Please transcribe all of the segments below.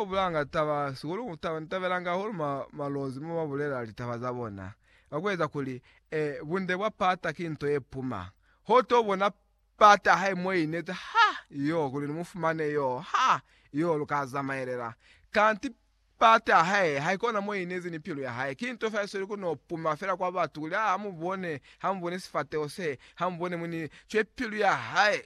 Bo bulanga taba sihulu ku taba, ni tabelanga hahulu ma, malozi mo ba bulela litaba za bona, ka ku eza kuli, e, bunde bwa pata ki nto ye puma. Ho to bona pata hae mo inezi, ha! Yoo, kuli ni mu fumane yoo, ha! Yoo, lu ka zamaelela. Kanti pata ya hae, haikona mo inezi ni pilu ya hae. Ki nto fela ye sweli ku no puma fela kwa batu, kuli, Ha, ha mu bone, ha mu bone sifateho se, ha mu bone muni, cwe pilu ya hae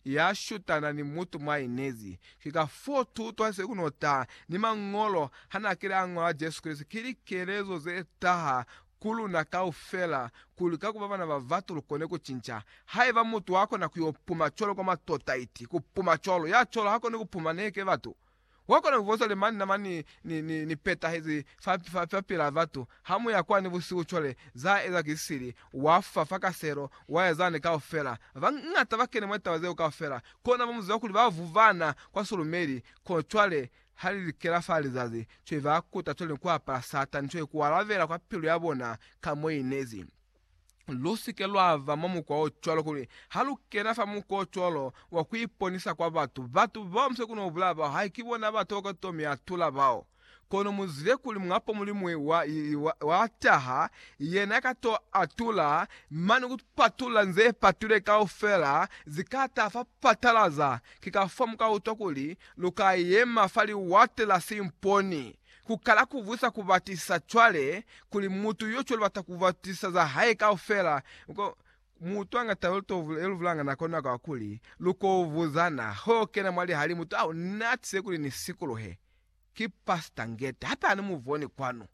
ya shutana ni mutu mwa inezi. Ki ka fo tuto se kuno ta ni Mañolo ha na kile a ngola Jesu Kreste ki likelezo ze taha ku luna kaufela, kuli ka ku ba bana ba batu lu kone ku cinca. Haiba mutu wa kona ku yo puma cwalo kwa matota, iti, ku puma cwalo, ya cwalo ha koni ku puma neke batu. Wa kona ku bonzwa li mani na mani ni, ni, ni petahezi fa, fa, fa pila batu. Ha mu ya kwani busihu cwale, za eza ki sili, wa fa fa kaselo, wa ya zani kaufela. Ba bañata ba kene mwa litaba zeo kaufela, Kona ba mu ziba kuli ba vuvana kwa sulumeli, kono cwale ha li likela fa lizazi, cwale ba kuta cwale ni ku apala Satani cwale ku alabela kwa pilu ya bona ka mo i nezi. Lu si ke lwa ba mwa mukwa o cwalo, kuli ha lu kena fa mukwa o cwalo wa ku iponisa kwa batu, batu bao mu se kona ku bulaya bao, hai ki bona batu bao ka to mi atula bao. Kono muzwize kuli mwapo mulimuñwi wa, wa, wa taha, yena ka to atula mane ku patulula nze patule kaufela, zi ka taha fa patalaza. Ki ka fo mu ka utwa kuli lu ka yema fa liwate la simponi, ku kala ku vwisa ku batisisa cwale, kuli mutu yo cwale bata ku batisisa za hae kaufela. Ko, mu utwa nga tau ye to, ye lu vulanga nako nako kakuli lu ko vuzana, ho kena mwa lihalimu, Tau, ni atize kuli ni sikuluhe. Ki Pastor Ngeta hape ani mu boni kwanu.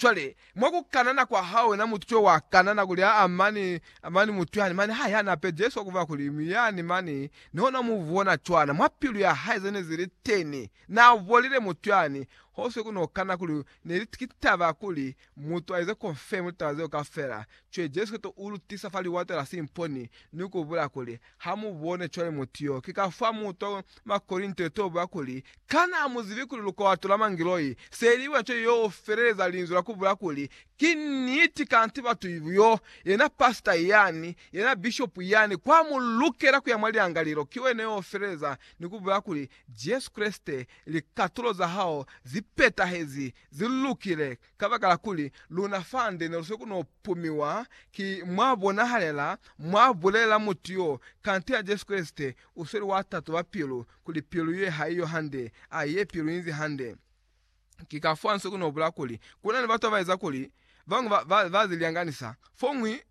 Cwale, mwa ku kanana kwa hao wena mutu co wa kanana kuli, aa, mani, mani mutu yani, mani ha yani ape Jesu wa ku ba kuli, mi yani, mani, ni hona mu bona cwana, mwa pilu ya hae zene zi li teni, na bolile mutu yani, ho se ku no kana kuli, ne li, ki taba ya kuli, mutu a ize confirm litaba zeo kafela, cwale Jesu Kristo u lu tisa fa liwato la simponi, ni ku bulaya kuli, Hamubone cwale mutu yo ki ka fa muto mwa Korinto ye toba kuli, Kana amuzibi kuli lukwato la mangiloi se li bona cwañi yo feleleza linzwi la kubula kuli, Ki niti kanti batu yo yena pasita yani, yena bishopu yani, kwa mu lukela kuya mwa liangalelo, ki wena yo feleleza ni kubula kuli, Jesu Kreste, likatulo za hao zi petahezi, zi lukile, Kabakala kuli luna fande neluseku no pumiwa ki mwabonahalela, mwabulelela mutu yo, kanti ya Jesu Kreste usweli wa tatoba pilu, kuli pilu ye haiyo hande, a ye pilu inzi hande. Ki kafoo anseku no bula kuli kuna ni batu abaeza kuli bañwi ba, ba, ba zilyanganisa, foñwi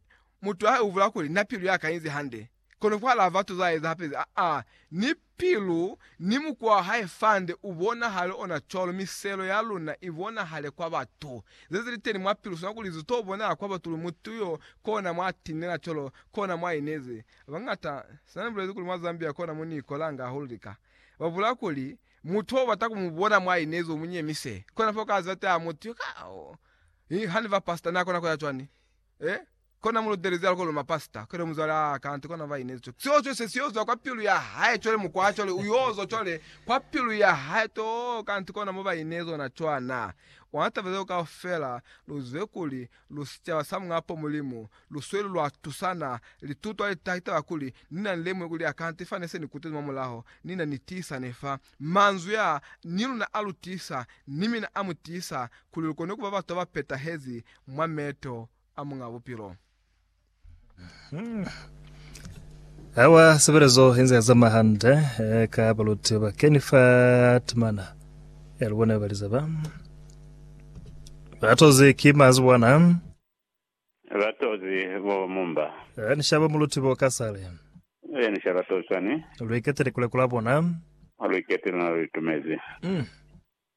mutu ha ubula kuli, Na pilu yaka inzi hande. Kono kwa la batu za eza hape ze, a ni pilu ni mukwa wa hae fande u bonahale ona cwalo, miselo ya luna i bonahale kwa batu. Ze zili teni mwa pilu sina kuli zi to bonahala kwa batu kuli mutu yo kona mwa tinela cwalo kona mwa inezi. Bangata, sina ni bulezi kuli mwa Zambia kona mo ni kolanga hahulu lika, ba bula kuli, Mutu ho bata ku mu bona mwa inezi u mu nyemise. Kona fa u ka ziba teha mutu yo, Ka ha ni ba pastor, na kona ku ya cwani? Eh? Kona mulutelezi a koloma pasita, cwale muzwale a kanti kona ba inezi cwale. Seo cwale se siozwa kwa pilu ya hae cwale mukwa cwale uyozwa cwale kwa pilu ya hae too kanti kona mo ba inezi ona cwana. Ona taba zeo kaufela luzwe kuli lu sicaba sa Muñ'a po Mulimu lusweli lwa tusana lituto ali taha kitaba kuli nina ni lemuhe kuli akanti fa nese ni kutezi mwa mulaho nina ni tiisane fa manzwi a ni luna a lu tiisa ni mina a mu tiisa kuli lu kone kuba batu ba ba petahezi mwa meto a Muñ'a Bupilo. Awa sebelezo inze yazama hande eh, ka baluti ba keni fa timana ya lubone baliza ba batozi ki mazi bwana Batozi bo mumba. eh, nishaba muluti bo kasale E ni shaba tosani. luiketele kule kula bona Olwikete luna luitumezi. mm.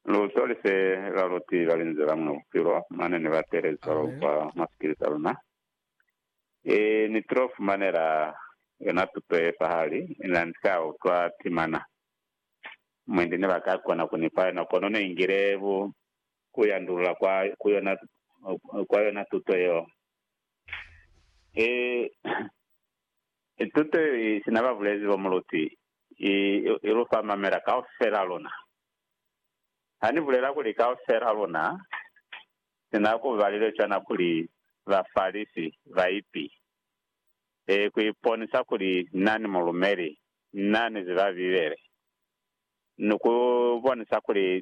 Luto li se la lu tiba li nzela mwa bupilo mane ni ba telezo kwa mwa sikili sa luna. I ni tilo fumanela yona tuto ye pahali, ina ni ka utwa timana. Mwendi ne ba ka kona ku ni fa yona, kono ne ngile bu ku yandulula kwa, ku yona, kwa yona tuto yeo. I, i tuto yeo i sina ba bulezi bo mu lutwi, i, i lu fa mamela kaufela luna. Ha Ni bulela kuli kaufela luna sina ku balile cwana kuli Bafalisi baipi, e, ku iponisa kuli Na ni mulumeli, Na ni ziba Bibele, ni ku bonisa kuli